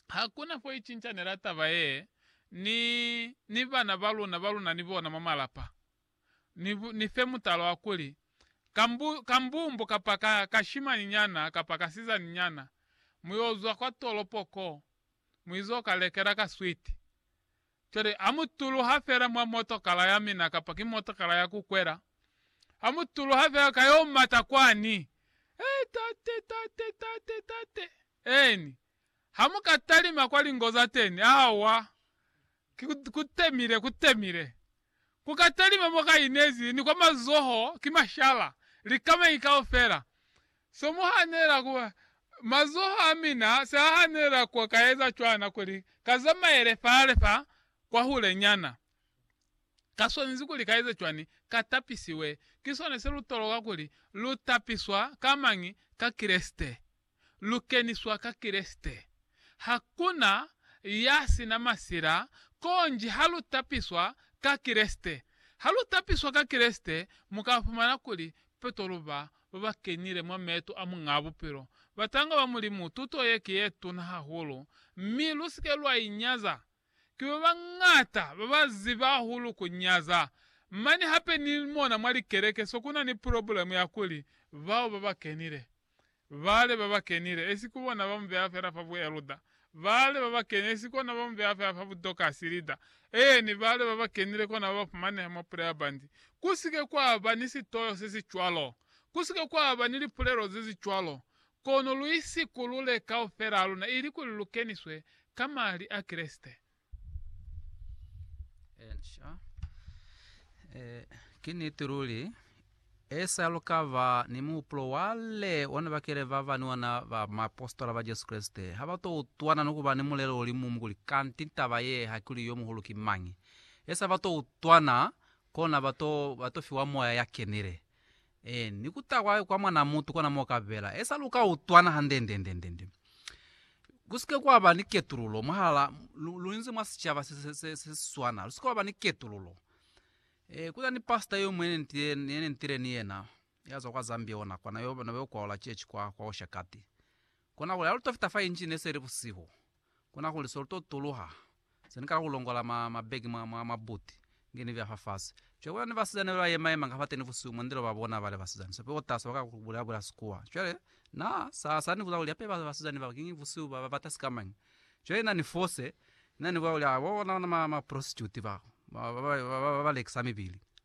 Hakuna fo icincanyela taba ye ni, ni bana ba luna ba luna ni bona mwa malapa. Ni, ni fe mutala wa kuli, ka mbu, ka mbumbo kapa ka, ka shimani nyana kapa ka sizani nyana, mu yo zwa kwa tolopo ko, mu izo ka lekela ka switi. Cwale ha mu tuluha fela mwa motokala ya mina kapa ki motokala ya ku kwela, ha mu tuluha fela ka yo mata kwani, He, tate, tate, tate, tate! Eeni, ha mu ka talima kwa lingo za teni, awa, ki ku, ku temile, ku temile. Ku ka talima mo ka inezi, ni kwa mazoho, ki mashala, likamai kaufela. Se mu hanela ku, mazoho a mina se a hanela ku ka eza cwana, kuli ka zamaele fale fa, kwahulenyana. Ka swanezi kuli ka eze cwani? Ka tapisiwe. Ki sona se lu toloka kuli lu tapiswa ka mañi? Ka Kreste. lu keniswa ka Kreste. Ha ku na ya si na masila, konji ha lu tapiswa ka Kreste. Ha lu tapiswa ka Kreste, mu ka fumana kuli peto lu ba ba ba kenile mwa meeto a Muñaa Bupilo, batanga ba Mulimu. Tuto ye ki ye tuna hahulu, mi lu si ke lwa i nyaza. Ki ba bañata ba ba ziba hahulu ku nyaza. Mane hape ni mona mwa likeleke se ku na ni pulobulemu ya kuli bao ba ba kenile Bale ba ba kenile, esi ku bona ba mu beha fela fa bueluda. Bale ba ba keni, esi kona ba mu beha fela fa budokasi, lida. Eeni, bale ba ba kenile kona ba ba fumaneha mwa pula ya bandi. Ku si ke kwa ba ni sitoyo se si cwalo. Ku si ke kwa ba ni lipulelo ze si cwalo. Kono lu isikulule kaufela luna, ilikuli lu keniswe ka Mali a Kreste. Encia. Eh, ki niti luli esa lukava ni muhupulo wale ona bakele ba bani ona ba maapostola ba Jesu Kreste ha ba to utwana ni kuba ni mulelo uli mumu kuli kanti taba ye hakili yo muhulu ki mañi. Esa ba to utwana kona ba to ba to fiwa moya ya kenile. Ee, ni ku ta kwa, kwa Mwan'a mutu kona mo ka bela. Esa lu ka utwana handendendendende. Ku si ke kwa ba ni ketululo mwahal'a, lu, lu inzi mwa sicaba se, se, se, se si swana. Lu si ke wa ba ni ketululo. Ee, ku na ni pastor yo muñwi ye ne nitile, ye ne nitile ni yena, ya zwa kwa Zambia ona, kwa na yo, na yo kwaola church kwa, kwa Oshakati. Kona kuli ha lu to fita fa inji, ne se li busihu. Kona kuli so to tuluha, se ni kala ku longola ma, mabegi mwa, mwa mabuti, nge ni vya fafasi. Cwale kuna ni basizani bali ba yema-yema nga fateni busihu mwa ndilo ba bona bale basizani sope bo tasa ba ka ku bula-bula sikuwa. Cwale, Na, sa, sa ni buza kuli, Hape ba, basizani baba, kiñi busihu ba, ba bata sikamañi? Cwale Na ni fose, Na ni bulela kuli, Ha, bo bona, bona ma, ma prostitute bao, ba, ba, ba, ba, ba, ba lekisa mibili.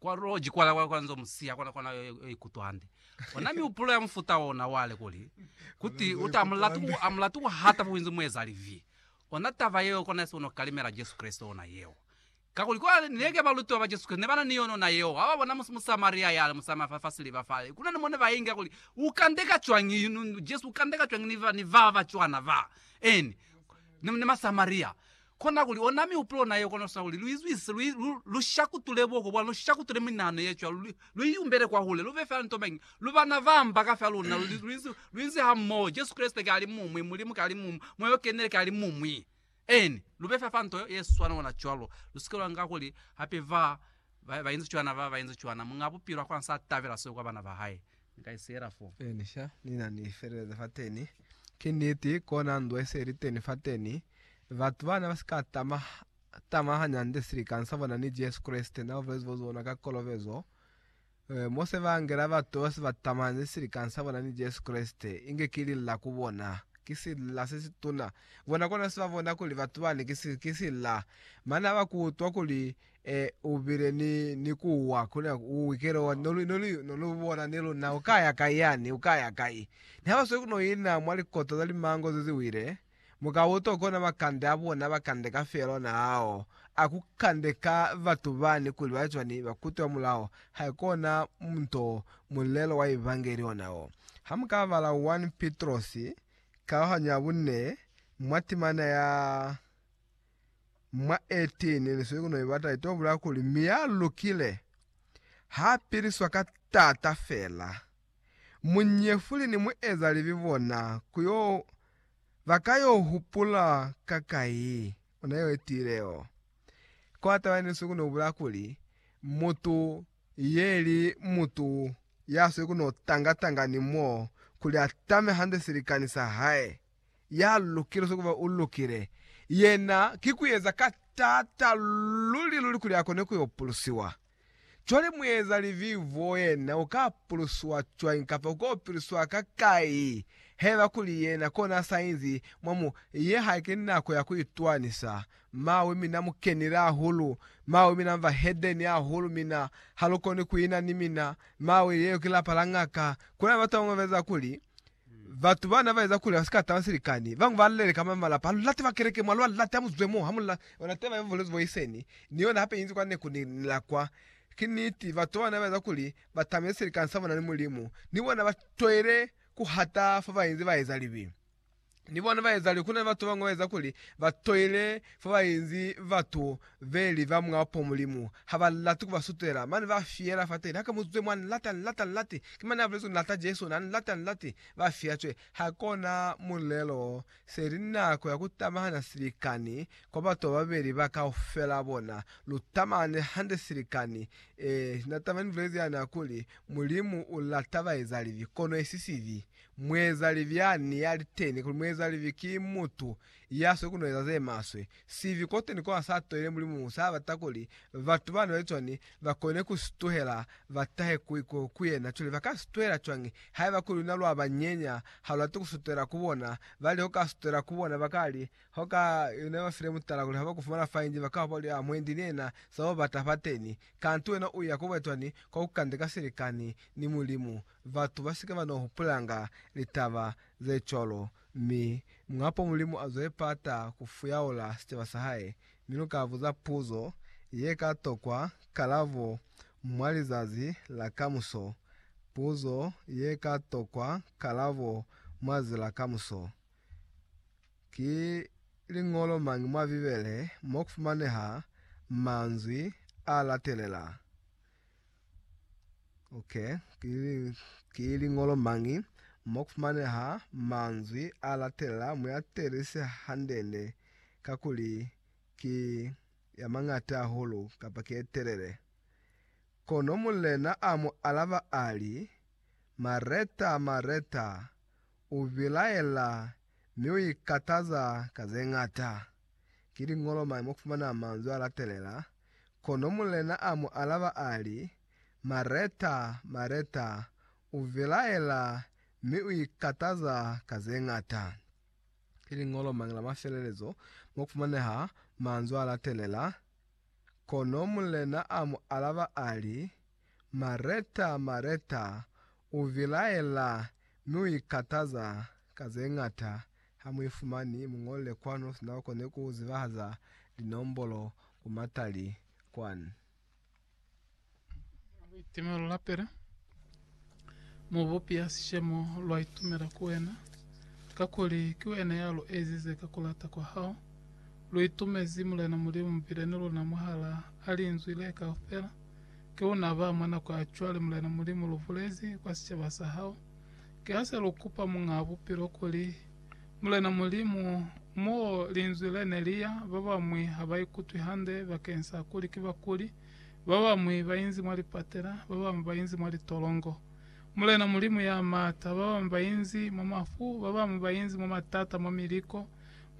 Kwa loji kwa lwa kwanzo musiya kona kona yo yo ikutwa hande. Ona mihupulo ya mufuta ona wale kuli kuti uti amulatu ku amulatu ku hata fuinzi mueza livi. Ona taba yeo kona yasi ono kalimela Jesu Kristo ona yeo. Kakuli kwa neke balutiwa ba Jesu Kristo ne bana ni yona ona yeo haba bona mu Musamaria yale musama fa fa siliva fale kuna ni mone ba inga kuli ukandeka cwangi Jesu ukandeka cwangi ni ba ni baba cwana ba eni ni ni Masamaria Kona kuli ona mihupulo na yeo konosa kuli lu izwise, lu, lu, lu shakutule buhoko bwani, lu shakutule minahano ye cwalo, lu, lu iyumbele kwahule, lu be fela nto mañi? Lu bana ba mba ka fela luna, lu, lu, lu, lu inzi hamoho. Jesu Kreste ki alimuñwi, Mulimu ki alimuñwi, Moya o Kenile ki alimuñwi. Amen. Lu be fela fa nto ye, ye swana ona cwalo. Lu sike lwa nga kuli hape ba, ba, ba inzi cwana, ba, ba inzi cwana. Muñ'a Bupilo ha kona sa tabela seo kwa bana ba hae. Ni sha ni na ni feleleza fateni. Ki niti, kona ndwe se li teni fateni. Batu ba ne ba si ka tama, tama hañande silikani sa bona ni Jesu Kreste na bulezi bwa zona ka kolobezo. E, mo se ba ngela batu ba si ba tamani silikani sa bona ni Jesu Kreste, inge ki lila ku bona. Ki sila se si tuna. Bona kona se ba bona kuli batu bani ki, ki sila. Mane ha ba ku utwa kuli E, u bile ni, ni ku wa, ku na, u ikele wa, no lu, no lu, no lu bona ni luna, u ka ya kai yani, u ka ya kai. Ni ha ba sweli ku no ina mwa likoto za limango ze zi wile, mu ka utwa kona makande a bona ba kandeka fela ona ao, a ku kandeka batu bani kuli ba cwani, ba kutwa mulaho, haikona nto, mulelo wa Evangeli ona wo. Ha mu ka bala 1 Pitrosi, kalahanyo ya bunne, mwa timana ya. mwa 18 ni sikuno ibata ito bulaya kuli mi ya lukile ha piliswa ka taata fela. Munyefuli ni mueza libi bona ku yo ba ka yo hupula ka kai ona yo etile o kwa taba ni sikuno bulaya kuli mutu ye li mutu ya sikuno tanga tanga ni mo kuli a tame hande silikani sa hae. ya lukile swa ku ba u lukile, yena ki ku eza ka t'ata luli luli kuli a kone ku yo pulusiwa. Cwale mueza libi bo yena u ka pulusiwa cwañi kapa u k'o piliswa ka kai haiba kuli yena kona a sa inzi mwa mu? Ye haike nako ya ku itwanisa. Mawi, mi na mu kenile hahulu. Mawi, mi na mba hedeni hahulu, mi na ha lu koni ku ina ni mina. Mawi, leo ki lapa la ngaka. Ku na ni batu ba bañwi ba eza kuli Batu ba na ba eza kuli ba si ka taba silikani. Bañwi ba leleka mwa malapa, Ha lu late ba keleke mwa lwa late ha mu zwe mo, ha mu la ona teba ya bubolezi bwa iseni, ni yona hape inzi kwa neku ni la kwa. Ki niti, batu ba na ba eza kuli ba tamele silikani sa bona ni Mulimu. Ni bona ba toile ku hata fo ba inzi ba eza libi. Ni bona ba eza libi. Ku na ni batu ba bañwi ba eza kuli ba toile fo ba inzi batu Veli va mwa po Mulimu ha ba lati ku ba sutela, mane ba fiyela fateni. Hake mu zwe mwa ni lata, ni lata, ni lati. Ki mane a bulezi ku lata Jesu, na ni lata, ni lati. Ba fiya cwe. Ha ko na mulelo, se li nako ya ku tamahana silikani kwa batu ba babeli ba kaufela bona. Lu tamahane hande silikani. Ee, na taba ni bulezi yani ya kuli, Mulimu u lata ba eza libi, kono esi sibi. Muezalibi yani ya li teni kuli muezalibi ki mutu Ya soko no eza ze maswe. Sibi kote ni ko a sa toile Mulimu sa bata kuli batu bana bali cwani ba kone ku si tuhela ba tahe ku iko ku yena. Cwale ba ka si tuhela cwañi? Haiba kuli luna lwa ba nyenya, ha lu lati ku sutela ku bona. Ba li ho ka sutela ku bona, ba ka li, Ho ka, ne ba file mutala kuli ha ba ku fumana fa inzi ba ka hopa kuli, Ah, mwendi ni yena sa bo bata fateni. Kanti wena u ya ku ba cwani? Kwa ku kande ka silikani ni Mulimu. Batu ba si ke ba no hupulanga litaba ze cwalo. Mi, Muhapo Mulimu azwe pata ku fuyaula sicaba sa Hae, mi luka buza puzo ye ka tokwa kalabo mwa lizazi la kamuso, puzo ye ka tokwa kalabo mwa zazi la kamuso. Ki liñolo mañi mwa Bibele mo ku fumaneha manzwi a latelela? Ok, ki liñolo mañi mo ku fumaneha manzwi a latelela? Mu a teelise handende, kakuli ki ya mañata hahulu kapa ki ye telele. Kono mulena a mu alaba a li, Mareta, Mareta, u bilaela Mi u ikataza ka ze ñata. Ki liñolo mañi mo kufumana manzwi a latelela? Kono mulena a mu alaba a li, Mareta, Mareta, u vilaela mi u ikataza ka ze ñata. Ki liñolo mañi la mafelelezo mo kufumaneha manzwi a latelela? Kono mulena a mu alaba a li, Mareta, Mareta, u vilaela mi u ikataza ka ze ñata, ha mu ifumani. Mu ñole kwanu, sina u koni ku zibahaza linombolo ku matali kwani. Mu itimela lapile, Mubupi ya sishemo, lwa itumela ku wena, kakuli ki wena ya lu ezize ka ku lata kwa hao. Lu itumezi Mulena Mulimu mubile ni luna mwahala a linzwi le kaufela. Ki luna ba mwa nako ya cwale Mulena Mulimu lu bulezi kwa sicaba sa hao. Ki ha se lu kupa Muñaa Bupilo kuli, Mulena Mulimu, mo linzwi le ne li ya, ba bañwi ha ba ikutwi hande bakeng sa kuli ki bakuli, Babañwi bainzi mwa lipatela, babañwi bainzi mwa litolongo. Mulena Mulimu ya Maata, babañwi bainzi mwa mafu, babañwi bainzi mwa matata mwa miliko.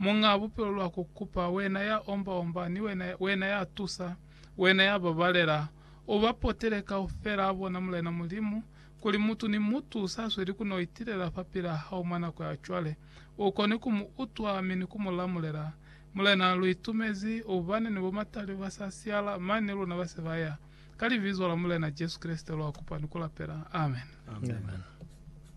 Muñaa Bupilo lwa ku kupa, Wena ya omba-omba, ni Wena, Wena ya tusa, Wena ya babalela. U ba potele kaufelaa bona, Mulena Mulimu, kuli mutu ni mutu sa sweli ku no itilela fapilaa Hao mwa nako ya cwale, u kone ku mu utwa mi ni ku mu lamulela. Mulena, lu itumezi, ubani ni bo matali ba sa siyala, mani luna ba se ba ya. Ka Libizo la Mulena Jesu Kreste lwa kupa ni ku lapela. Amen. Amen.